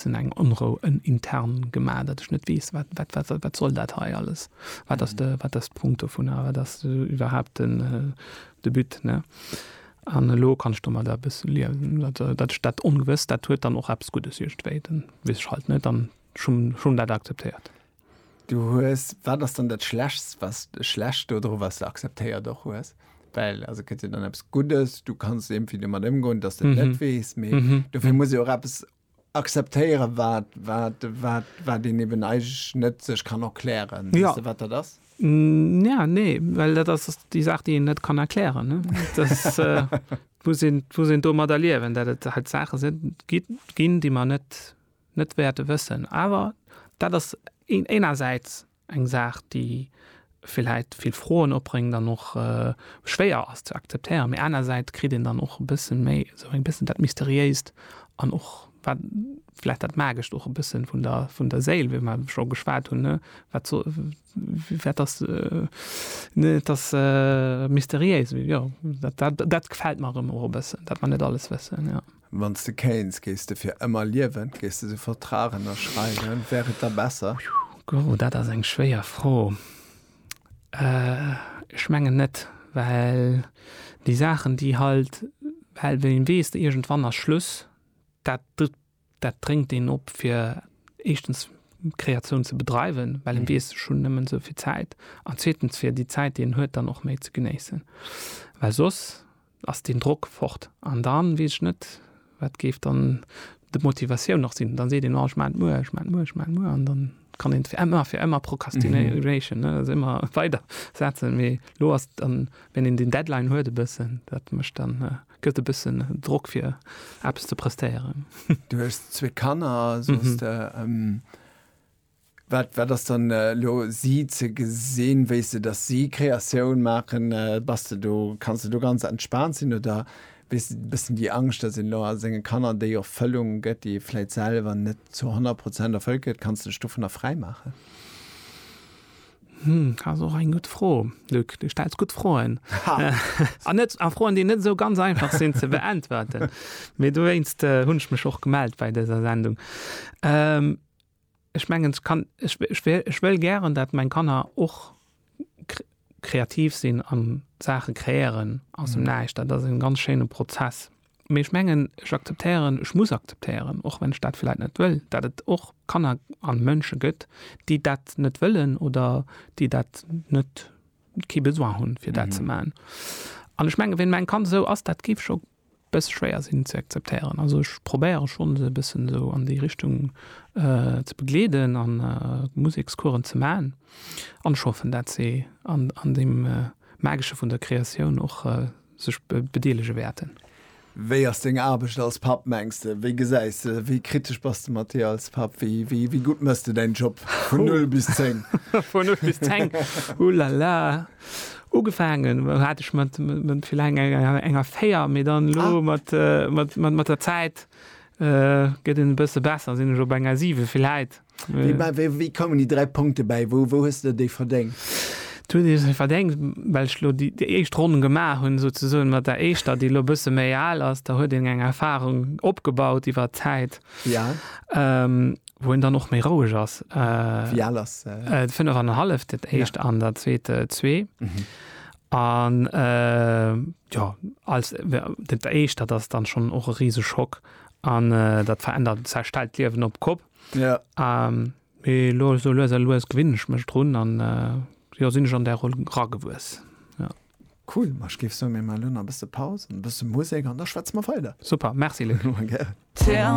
sinn eng Onrou, en intern gemaach, dat ech net weess, wat wat wat wat soll dat hei alles, wat ass de wat ass de Punkt dovun a wat ass iwwerhaupt den de But, ne? An elo kann ech domadder e bësse liewen, dat dat ech dat Ongewësst, dat huet dann och eppes Guddes iergendwéi, dann weess ech halt net an ech hunn ech hunn dat akzeptéiert. Du hues, wat ass dann dat Schlechtst, was schlecht dodru, was de akzeptéiert och hues? Well also et gëtt jo dann eppes Guddes, du kanns iergendwéi domat ëmgoen, dass de et net weess, mee dofir muss jo och eppes Akzeptéieren, wat, wat, wat, wat een eben eigentlech net sech kann erklären. Weess de, wat dat ass? Ja, nee, well dat ass déi Saach, déi een net kann erklären, ne? Dass, et muss een, et muss een domadder liewen, dat et halt Saache sinn, ginn, ginn, déi mer net, net wäerte wëssen. Awer dat ass een, enersäits Eng Saach, déi villäit vill Froen opbréngt an och schwéier ass ze akzeptéieren, mee anersäits kritt een dann och e bësse méi esou eng bëssen dat Mysteriéist an och wat villäit dat Magescht och e bësse vun der vun der Séil, wéi mer scho geschwat hunn, ne, wat so wat ass, ne, et ass mysteriéis, jo, dat gefält mer erëm och e bëssen, dat mer net alles wëssen, jo. Wann s de kéints, géifs de fir ëmmer liewen? Géifs de esou Vertrag ënnerschreiwen? Wär et da besser? Gogo, Dat ass eng schwéier Fro. Ech mengen net, well déi Saachen, déi halt, well wann een weess, iergendwann ass Schluss, dat, dat drénkt een op fir éischtens Kreatioun ze bedreiwen, well een weess, ech hunn nëmmen esou vill Zäit, an zweetens fir déi Zäit, déi een huet, dann och méi ze genéissen, well soss, ass deen Drock fort. An dann weess ech net, wat géif dann d'Motivatioun nach sinn. Dann seet een, oh ech maan et muer, ech maan et muer, ech maan et muer an dann kann een fir ëmmer, fir ëmmer Procrastination, ne, also ëmmer weider setzen. Mee elo ass dann, wenn een deen Deadline huet e bëssen, dat mécht dann, gëtt e bëssen Drock fir eppes ze prestéieren. Du hues zwee Kanner, soss. Wat, wat ass dann elo si ze gesinn? Wéi's de, datt si Kreatioun maachen, bass de do, kanns de do ganz entspaant sinn oder wéi's de e bëssen déi Angscht, datt een elo a senge Kanner déi Erfëllung gëtt, déi e vläit selwer net zu honnert Prozent erfëllt kritt? Kanns de dech dovunner fräi maachen? Hm, ass och eng gutt Fro, Luc. Du stells gutt Froen. An net, a Froen, déi net esou ganz einfach sinn ze beäntwerten. Mee dowéinst hunn ech mech och gemellt bei dëser Sendung. Ech mengen, ech wëll gären, datt meng Kanner och kreativ sinn a Saache kreéieren aus dem Näischt. Dat ass e ganz schéine Prozess. Mee ech mengen, ech akzeptéieren, ech muss akzeptéieren, och wann ech dat vläit net wëll, datt et och Kanner a Mënsche gëtt, déi dat net wëllen oder déi dat net, kee Besoin hunn, fir dat ze maachen. An ech mengen, wéi meng Kand esou ass, dat géif scho Bësse schwéier sinn ze akzeptéieren. Also ech probéiere schonn se e bëssen esou an déi Richtung ze begleeden a Musekscoursen ze maachen. An ech hoffen, dat se an deem Magesche vun der Kreatioun och sech bedeelege wäerten. Wéi ass deng Aarbecht als Papp, mengs de? Wéi gesäis de se? Wéi kritesch bass de mat dir als Papp? Wéi gutt mëss de däin Job vun null bis zéng? Vun null bis zéng? Ouh la la! Ugefaangen hat ech mat enger 4, mee dann elo mat der Zäit gëtt en e bësse besser, sinn ech op enger 7 villäit. Wéi koumen déi 3 Punkte bäi? Wou hues de déi verdéngt? Wou ech se verdéngt? Well ech elo déi éischt Ronn gemaach hunn, souzesoen, mat der éischter, déi elo e bësse méi al ass. Da huet een eng Erfarung opgebaut iwwer d'Zäit. Ja. Ähm, wou en dann och méi roueg ass. Äh, Wie al ass? Äh, äh, fënnef an hallef, dat éischt ja. an der zweete zwee. Mhm. An äh, ja, als dat éischt, dat ass dann schon och e riese Schock an äh, dat verändert zerstellt d'Liewen op Kopp. Ja. Ähm, Mee lo so lues a lues gewinn ech mech drun an äh, jo sinn ech an der Roll ragewuess. Ja. Cool, ma ech géif soen, mir maachen elo nach e bësse Paus, e bësse Musek an da schwätze mer weider. Super, merci Luc. Tell